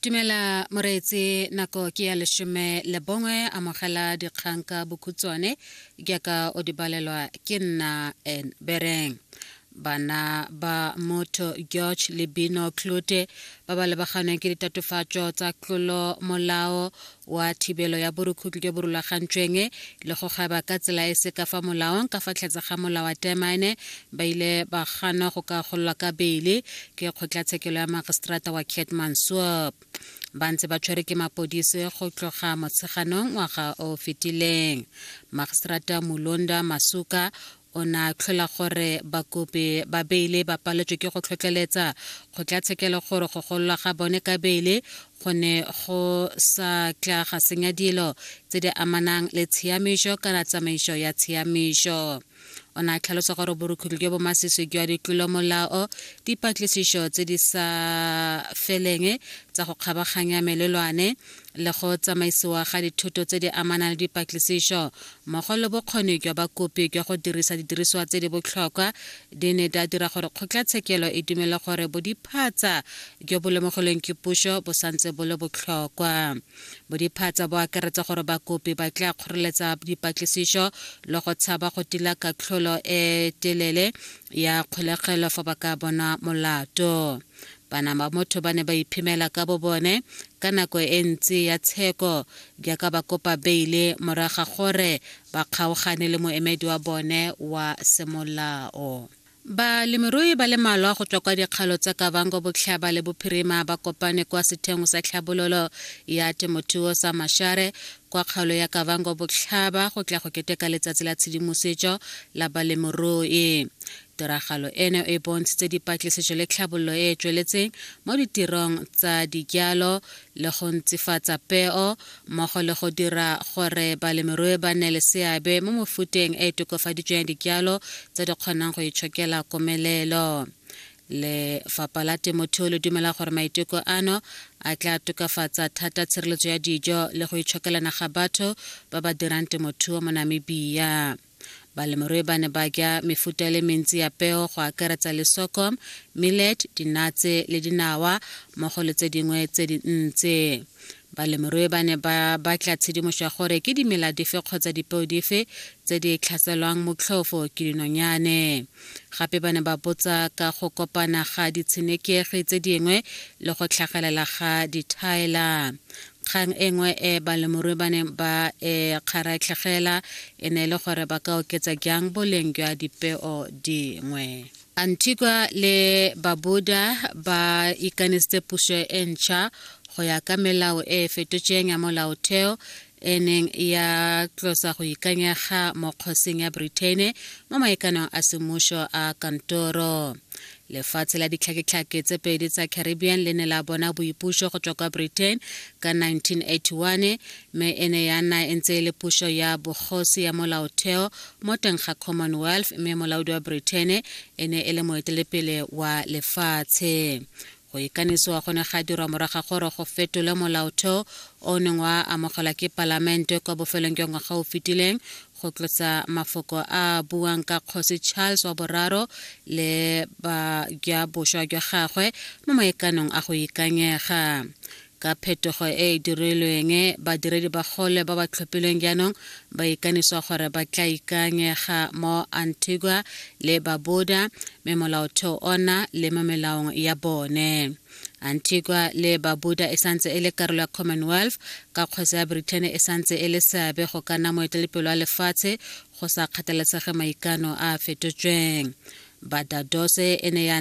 Tumela moreetse nako ke ya leshome le bongwe amogela dikgang ka bokhutswane jaaka o di balelwa ke nna en bereng bana ba motho george lebino clote ba ba lebaganeng ke ditatofatso tsa tlolo molao wa thibelo ya borukhutlo jo bo rulagantsweng le go gaba ka tsela e se ka fa molaong ka fa tlhetse ga molao wa termine ba ile ba gana go ka gololwa ka beile ke kgotlatshekelo ya magistrata wa cat mansuop ba ntse ba tshwere ke mapodisi go tloga motsheganong ngwaga o fetileng magistrata mulonda masuka O ne a tlhola gore bakopi ba beile ba paletswe ke go tlhotlheletsa kgotlatshekelo gore go gololwa ga bone ka beile go ne go sa tla ga senya dilo tse di amanang le tshiamišo kana tsamaiso ya tshiamišo. O ne a tlhalosa gore borukhutlhi jo bo masisi jwa ditlolomolao, dipatlisišo tse di sa feleng tsa go kgabaganya melelwane, le go tsamaisiwa ga dithuto tse di amanang le dipatlisišo mmogo le bokgoni jwa bakopi jwa go dirisa didirisiwa tse di botlhokwa di ne di a dira gore kgotlatshekelo e dumele gore bodiphatsa jo bo lemogilweng ke puso bo santse bo le botlhokwa bodiphatsa bo akaretsa gore bakopi ba tla kgoreletsa dipatlisišo le go tshaba go tila katlholo e telele ya kgolegelo fa ba ka bona molato bana ba motho ba ne ba iphemela ka bo bone ka nako e ntsi ya tsheko jaaka ba kopa beile morago ga gore ba kgaogane le moemedi wa bone wa semolao Balemirui ba le malwa go tswa kwa dikgalo tsa Kavango Botlhaba le Bophirima ba kopane kwa setheong sa tlhabololo ya temothuo sa Mashare kwa kgaolo ya Kavango Botlhaba go tla go keteka letsatsi la tshedimosetso la balemirui. Tiragalo eno e bontshitse dipatlisiso le tlhabololo e e tsweletseng mo ditirong tsa dijalo le go ntsifatsa peo mmogo le go dira gore balemirui ba nne le seabe mo mofuteng e e tokofaditsweng ya dijalo tse di kgonang go itshokela komelelo. Lefapha la Temothuo le dumela gore maiteko ano a tla tokafatsa thata tshireletso ya dijo le go itshokelana ga batho ba ba dirang temothuo mo Namibia. Balemirui ba ne ba ja mefuta e le mentsi ya peo go akaretsa le sorghum, millet, dinatse le dinawa mmogo le tse dingwe tse dintsi. Balemirui ba ne ba batla tshedimoso ya gore ke dimela dife kgotsa dipeo dife tse di tlhaselwang motlhofo ke dinonyane. Gape ba ne ba botsa ka go kopana ga ditshenekegi tse dingwe le go tlhagelela ga dithaela. kgang e nngwe e balemorui ba neng ba e kgaratlhegela e ne e le gore ba ka oketsa jang boleng jwa dipeo dingwe antigua le babuda ba ikanesitse puso e ntšha go ya ka melao e e fetotsweng ya molaotheo e neng ya tlosa go ikanyega mo kgosing ya britain mo maekanong a semmušo a kantoro Lefatshe la ditlhaketlhake tse pedi tsa Caribbean le ne la bona boipuso go tswa kwa Britain ka 1981 mme e ne ya nna e ntse e le puso ya bogosi ya molaotheo mo teng ga Commonwealth mme molaodi wa Britain e ne e le moetelepele wa lefatshe. Go ikanisiwa go ne ga dirwa moraga gore go fetolwe molaotheo o neng wa amogelwa ke palamente kwa bofelong jwa ngwaga o fetileng go tlotsa mafoko a a buang ka kgosi charles wa boraro le ba jwa boswa jwa gagwe mo maekanong a go ikanyega ka phetogo e e dirilweng badiredi ba gole ba ba tlhophilweng jaanong ba ikaniswa gore ba tla ikanyega mo antigua le babuda me molaotheo ona le mo melaong ya bone antigua le babuda e santse e le karolo ya commonwealth ka kgwesa ya britain e santse e le seabe go ka nna moetelepelo wa lefatshe go sa kgathalesege maikano a a fetotsweng badadose e ne ya